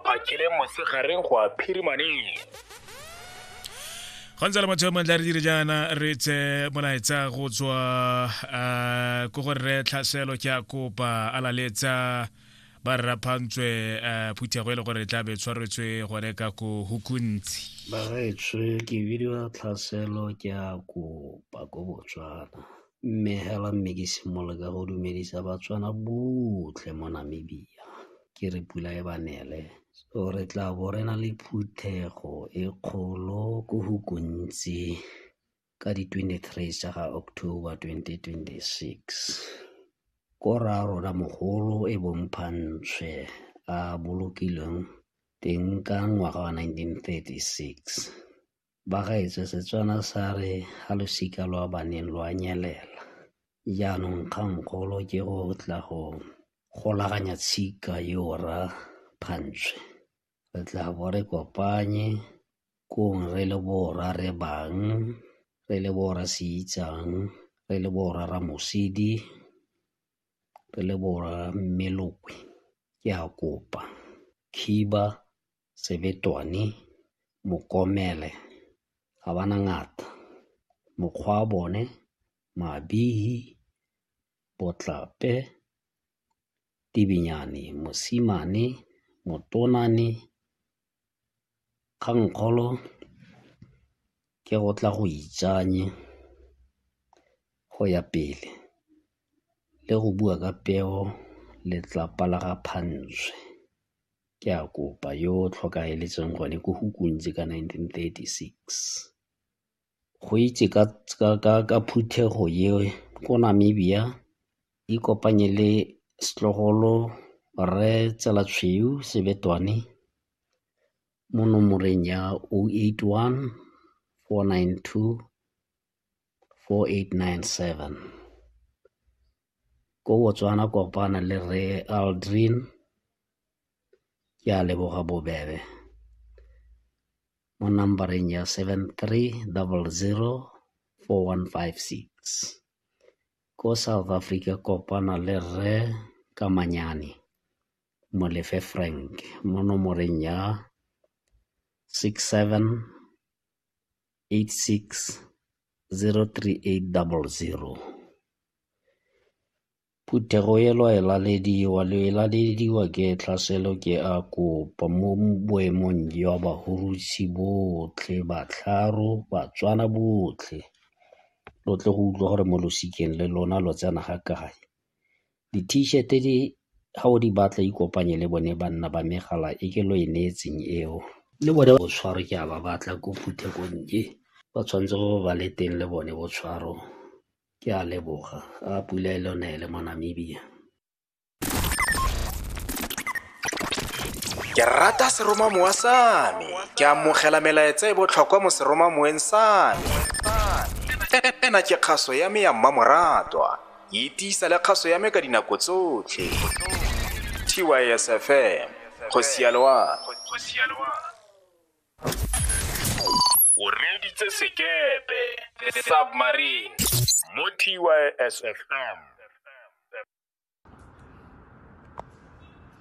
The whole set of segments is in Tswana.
bakile mosegareng go a phirimaneng go ntse le motho mantle re dire jaana re tse molaetsa go tswa eh, ko gore re tlhaselo ke a kopa a laletsa ba rraphantswe eh, phuthego e le gore tla be tshwaretswe gone ka ko hukuntsi baretswe ke bidiwa tlhaselo ke a kopa ko botswana Mme hela mme ke simolole ka go dumedisa Batswana botlhe mo Namibia ke re pula e ba nele. So re tla bo re na le phuthego e kgolo ko go kontsi ka di 23 tsa ga October 2026. Ko ra rona mogolo e bomphantshe a bolokilweng teng ka ngwaga wa 1936. ba gaetsho Setswana sa re ga losika lwa baneng lwa nyelela. Jaanong kgangkgolo ke go tla go golaganya tshika yo ra phantshwe. Re tla bo re kopanye kong re le borra re bang, re le borra se itsang, re le borra ramosidi, re le borra mmelokwe. Ke a kopa khiba sebetwane, mokomele ga ba na ngata. Mokgwa wa bone mabihi, botlape, tibinyane, mosimane, motonwane, kgangkgolo ke go tla go itsanye go ya pele le go bua ka peo letlapa la ga Phantshe. Ke a kopa yo o tlhokaeletseng gone ko go kuntse ka nineteen thirty-six. Go itse ka phuthego eo ko Namibia ikopanye le setlogolo Rre Tsela Tshweu Sebetwane mo nomoreng ya oh eight one, four nine two, 4897. Ko Botswana kopana le Rre Aldrin, ke a leboga bobebe mo number-eng ya 73004156. Ko South Africa kopana le Rre Kamanyane Molefe Frank mo nomoreng ya 67 086-03800. Phuthego elo e lalediwa le e lalediwa ke tlhaselo ke a kopa mo boemong jwa bahurusi botlhe batlharo batswana botlhe lo tle go utlwa gore mo losikeng le lona lo tsena ga kae Di-T-shirt di ga o di batla ikopanye le bone banna ba megala e ke lo e neetseng eo. Le bone botshwaro ke a ba batla ko Phuthegonnye ba tshwanetse go ba le teng le bone botshwaro ke a leboga a pula e le nele mo Namibia. Ke rata seromamowa sa me. Ke amogela melaetsa e botlhokwa mo seromamoweng sa me. Ena ke kgaso ya me ya mmamoratwa. Itisa le kgaso ya me ka dinako tsotlhe. TYSFM, go sialoa. O reeditse sekepe, submarine, mo TYSFM.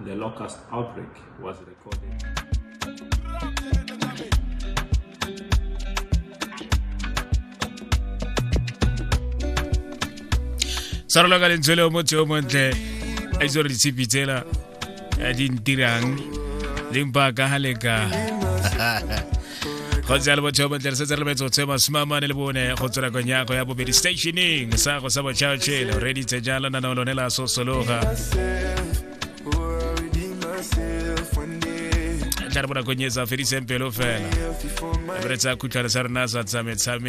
The locust outbreak was recorded. sa roloka lentswe le o motse o montle a itse gore ditshipi tsela di ntirang leng ba ka ga leka go tsaya le botšhao botle re setse re lebetse go tshwe masome a mane le bone go tswela konyago ya bobedi stationeng sa go sa botšhao tšhele reditse jalo na nao lone la sosologa tla re bonakong e sa fediseng pelo fela re tsa khutlhwane sa rena sa tsametsame